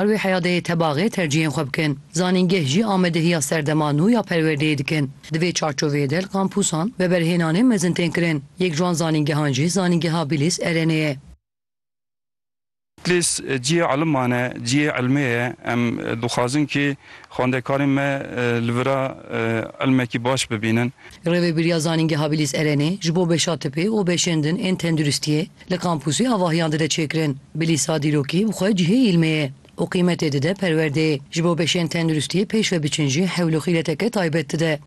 Li wê heya de yê tebaxê tercîhên xwe bikin. Zanîngeh jî amadehiya serdema nû ya perwerdeyê dikin. Di vê çarçoveyê de li kampûsan veberhênanên mezin tên kirin. Yek ji wan zanîngehan jî Zanîngeha Bîlîs Erenê ye. Bîlîs cihê eliman e, cihê elmê ye. Em dixwazin kê xwendekarên me li vir a elmekî baş bibînin. Rêvebîriya Zanîngeha Bîlîs Erenê ji bo beşa tipê û beşên din ên tenduristiyê, Li kampûsê avahiyan dide çêkirin, bi lîsa dîrokî bi xwe cihê îlmê ye û qîmetê dide perwerdeyê. Ji bo beşên tenduristiyê pêş ve biçin jî hewl û xîreteke taybet dide.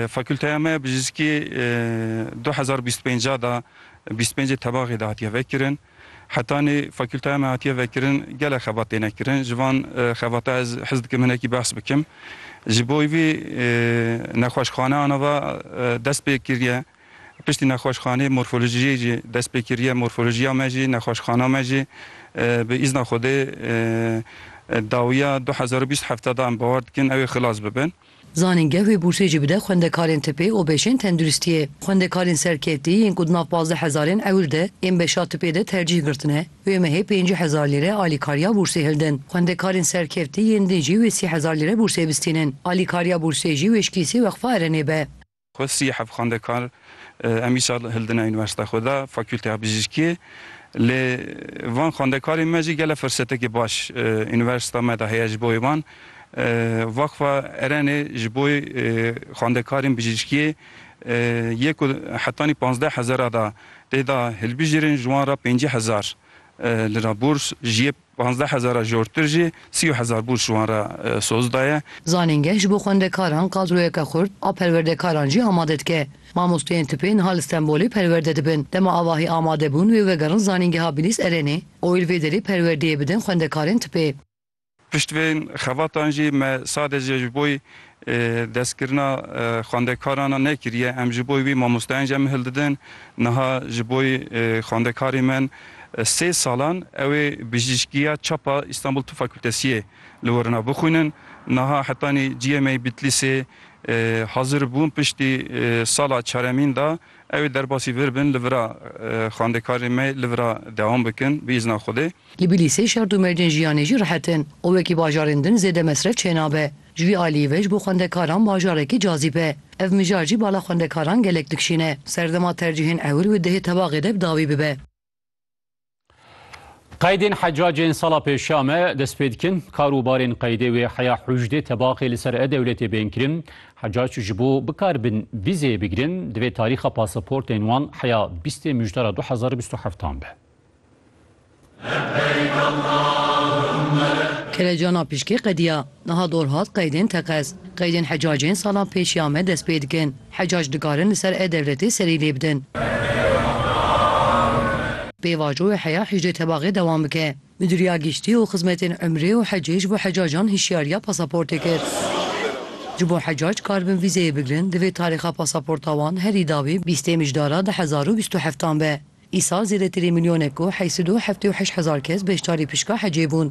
Fakulteya me ya bijîskî du hezar û bîst û pênc a da bîst û pêncê tebaxê de hatiye vekirin. Hetanî fakulteya me hatiye vekirin gelek xebat têne kirin. Ji van xebata ez hez dikim hinekî behs bikim. Ji bo vî nexweşxane ana va dest pê kiriye. Piştî nexweşxanê morfolojiyê jî dest pê kiriye. Morfolojiya me jî, nexweşxana me jî bi îzna Xwedê dawiya du hezar û bîst hefte da em bawer dikin ew ê xilas bibin. Zanînge wê bûrsê jî bide xwendekarên tipê û bêşên tenduristiyê. Xwendekarên serketî yên ku di nav pazdeh hezarên ewir de ên beşa tipê de tercîh girtine wê mehê pêncî hezar lîre alîkariya bûrsê hildin. Xwendekarên serkeftî yên din jî wê sî hezar lîre bûrsê bistînin. Alîkariya bûrsê jî wêşkî sê weqfa Erenê be. Xwe sî hevxwendekar em îsal hildine unîversîteya xwe de, Fakûlteya Bijîşkiyê. Lê van xwendekarên me jî gelek firsetekî baş unîversîteya me de heye ji bo wan. Wexfa Erenê ji bo xwendekarên bijîşkiyê yê ku hetanî pazdeh hezar a de tê de hilbijêrin, ji wan re pêncî hezar lira bûrs ji yê Panzdeh hezara jortir jî sî û hezar bûrs ji wan re soz daye. Zanîngeh ji bo xwendekaran kadroyeke xurt a perwerdekaran jî amade dike. Mamosteyên tipê niha li Stenbolê perwerde dibin. Dema avahî amade bûn wê vegerin Zanîngeha Bilîs Erenê û îr vê derê perwerdeyê bidin xwendekarên tipê. Pişt vê xevatan jî me sadece ji bo Destkirina xwendekaran a nekiriye. Em ji bo wî mamosteyên jemi hildidin. Niha ji bo xwendekarê min sê salan ew ê bijîşkiya çap a Îstanbul Tib Fakultesiyê li Wurna bixwînin. Niha hetanî GMA Bitlîsê hazir bûn piştî sala çaremîn da ew ê derbasî vir bin li vira xwendekarê me li vira dewam bikin bi îzna Xwedê. Li Bitlîsê şert û mercên jiyanê jî rihet in û wekî bajarên din zêde mesref çênabe. Ji vî aliyê ve ji bo xwendekaran bajarekî cazîb e. Ev mijar jî bala xwendekaran gelek dikişîne. Serdema tercîhên ewil û dihê tebaxê de bi dawî bibe. Qeydên hecacên sala pêşiya me dest pê dikin. Kar û barên qeydê wê heya hûjdê tebaxê li ser e-dewletê bên kirin. Hecac ji bo bikaribin vîzeyê bigirin, divê tarîxa pasaportên wan heya bîstê mijdara du hezar û bîst û heftan be. Kelecana pişkê qediya. Niha dor hat qeydên teqez. Qeydên hecacên salan pêş ya me dest pê dikin. Hecac dikarin li ser e-Dewletê serî lê bidin. Pêvajo wê heya hicrê tebaxê dewam bike. Midûriya Giştî û Xizmetên Umrê û Hecê ji bo hecacan hişyariya pasaportê kir. Ji bo hecac karibin vîzeyê bigirin, divê tarîxa pasaporta wan herî dawî bîstê mijdara du hezar û bîst û heftan be. Îsal zêdetirî milyonek û heyî sed û heftê û heşt hezar kes beşdarî pişka hecê bûn.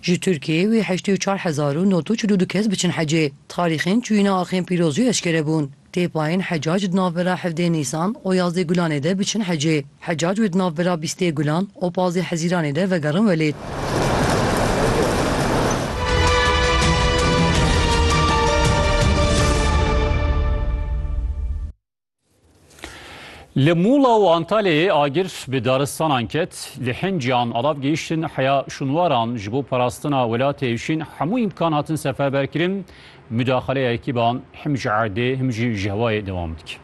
Ji Tirkiyeyê wê heştê û çar hezar û nod û çil û du kes biçin hecê. Tarîxên çûyîna axên pîroz jî eşkere bûn. Tê payên Hecac di navbera hevdê Nîsan û yazdê Gulanê de biçin hecê. Hecac wê di navbera bîstê Gulan û pazdê Hezîranê de vegerin welêt. Li Mûla û Antalyayê agir bi daristanan ket, li Hinciyan alav gihiştin heya şûnwaran ji bo parastina welatê hişîn hemû îmkan hatin seferberkirin, mudaxaleya ekîban him ji erdê him jî ji hewayê dewam dike.